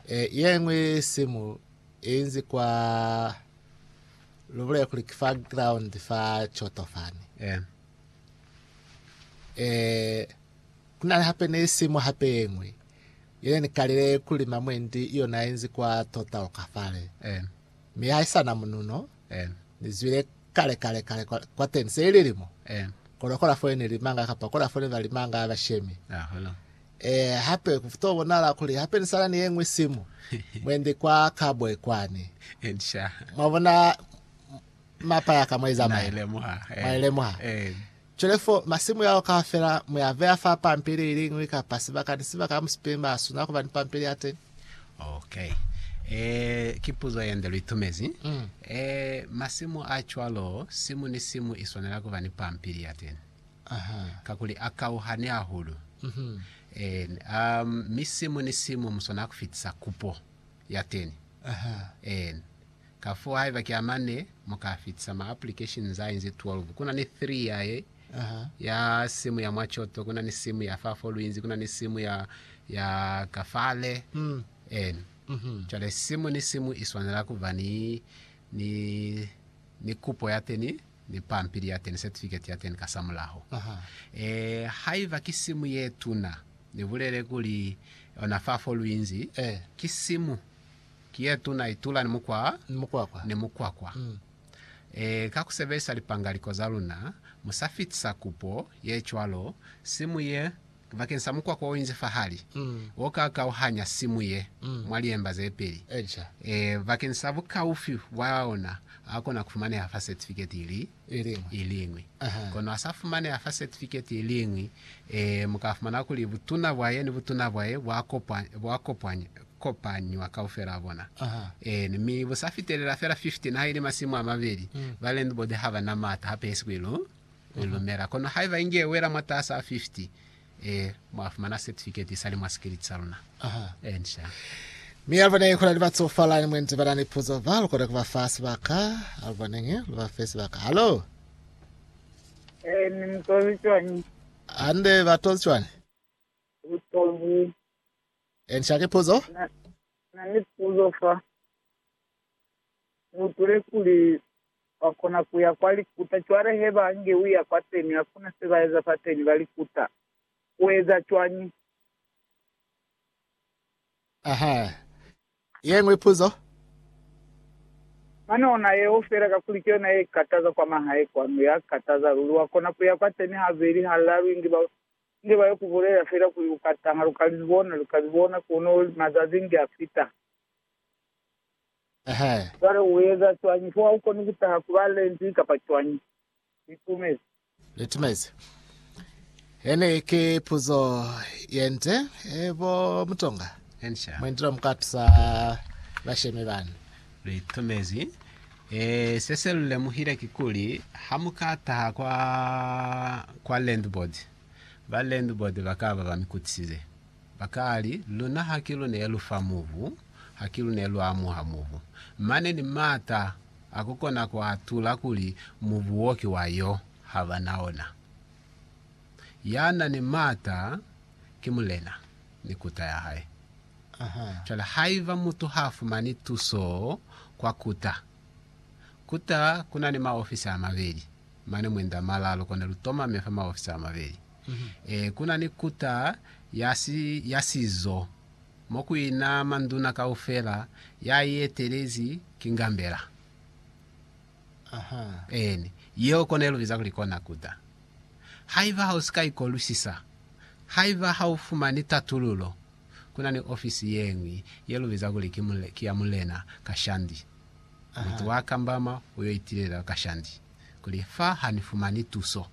E, yeñwi simu inzi kwa lubulele kuli ki fa ground fa chotofani e e kuna le hape ne simu hape yeñwi yene nikalile kulima mwendi yona inzi kwa tota okafale e mi ha isana mununo e nizwile kale kale kale kwa, kwa teni se ililimo e kola kola fo ne limanga kapa kola fo ne balimanga abashemi ah, Ee, hape ku to bonala kuli hape ni sa na ni ye ñwi simu, mwendi kwa Kabwe kwani. Mwa bona mapa ya ka mwa izamaela? Mwa i lemuha? Cwale fo, masimu yao kaufela mu ya beya fa pampili iliñwi, kapa sibaka ni sibaka ha mu sipili, ba suna kuba ni pampili ya teñi. Okay. Ee, ki puzo ye nde lu itumezi. Ee, masimu a cwalo, simu ni simu i swanela kuba ni pampili ya teñi. kakuli a kauhane hahulu mi simu ni simu mu swanela ku fitisa kupo yateni. Kafoo haiba ki amane, mu ka fitisa ma applications a inzi 12. Kuna ni 3 ya ye, ya simu ya mwa coto, kuna ni simu ya fa fo lu inzi, kuna ni simu ya ka fale. Cwale simu ni simu i swanela kuba ni kupo yateni. ni pampili ya teni, certificate ya teni, kasamulaho. E, haiba ki simu ye tuna, Ni bulele kuli, ona fa fo lu inzi, ki simu, ki ye tuna, i tula ni mukwa, ni mukwakwa. E, ka ku sebelisa lipangaliko za luna, mu sa fitisa kupo ye cwalo, simu ye. Bakeng sa mukwako o inzi fahali, o ka kauhanya simu ye mwa liemba ze peli, bakeng sa bukaufi bwa ona a kona ku fumaneha fa setifiketi i liñwi. Kono a sa fumaneha fa setifiketi i liñwi, mu ka fumana kuli butuna bwa ye ni butuna bwa ye bwa kopanywa kaufela bona, mi bu sa fitelela fela 15 ha ili masimu a mabeli. Ba landlord ha ba na m'ata hape hesi ku i lu. u lumela. Kono haiba inge ya wela mwataasa a 50, ee, mwa fumana setifiketi isali mwa sikiliti sa luna. Inca. Mi ya lubona ikula liba tsofala ni mwendi bana ni puzo ba lukona kuba fa sibaka aluboneñi luba fe sibaka. Hallo. Eh, ni mutozi cwani? Hande, ba tozi cwani? Utozi. Inca ki puzo? Na, na ni puzo fa. Mutule kuli Ba kona ku ya kwa likuta. Cwale he ba nge u ya kwateni, hakuna se ba eza fateni. Ba likuta. U eza cwañi? Aha. Yeñwi puzo? Mane ona yeo fela, kakuli ki yona ye kataza kwa mahae kwanu. Ya kataza luli. Wa kona ku ya kwateni habeli, halalu, inge ba, inge ba yo ku bulelela fela kuli lu ka taha. Lu ka li bona. Lu ka li bona. Kono mazazi inge a fita. Ehe. Cwale u eza cwañi ku haukoni ku taha ku ba lenti kapa cwañi? Litumezi. Litumezi. He ne ki puzo ye nde, he, bo Mutonga, mwendi lwa mu ka tusa bashemi bani. Litumezi. E, se se lu lemuhile kikuli, ha mu ka taha kwa, kwa Landboard, ba Landboard ba ka ba ba mi kutisize. Ba ka li, Luna ha ki lu ne lu fa mubu, ha ki lu ne lu amuha mubu. Mane ni maata a ku kona ku atula kuli mubu wo ki wa yo, ha ba na ona. Ya na ni maata ki Mulena ni kuta ya hae. Cwale haiba mutu ha fumani tuso kwa kuta, kuta ku na ni maofisi a mabeli mane mwinda malalu kone lu tomame fa maofisi a mabeli. E, ku na ni kuta ya, si, ya sizo, mo ku ina manduna kaufela, ya i etelezi ki ngambela. Eeni, yeo kona ilu biza kuli kona kuta. Haiba ha u si ka ikolusisa, haiba ha u fumani tatululo, ku na ni ofisi yeñwi ye lu biza kuli ki, ki ya mulena kashandi. Mutu wa kambama u yo itilela kashandi kuli, Fa ha ni fumani tuso.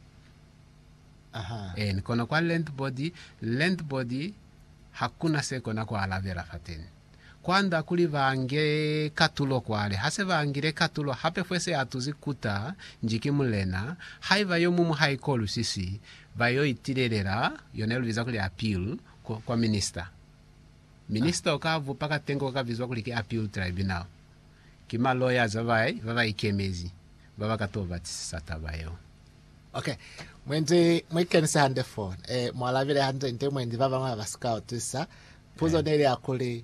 Eeni, kono kwa lentbodi, lentbodi hakuna se kona ku alabela fateni. Kwanda kuli ba nge katulo kwale. Hase ba ngile katulo, hape fwe se atuzi kuta nji ki mulena, haiba yo mumu ha ikolusisi, ba yo itilelela yone lubiza kuli appeal kwa, kwa minister. Minister uka bupa katengo kaka bizwa kuli ki appeal tribunal. Ki ma lawyers ba ba, ba ba ikemezi ba ba ka to batisisa taba yeo. Ok. Mwendi mwi kenise hande foo. E, mwa labile hande nte mwendi ba bangwe ha ba sika utwisa. Puzo ne ili ya kuli,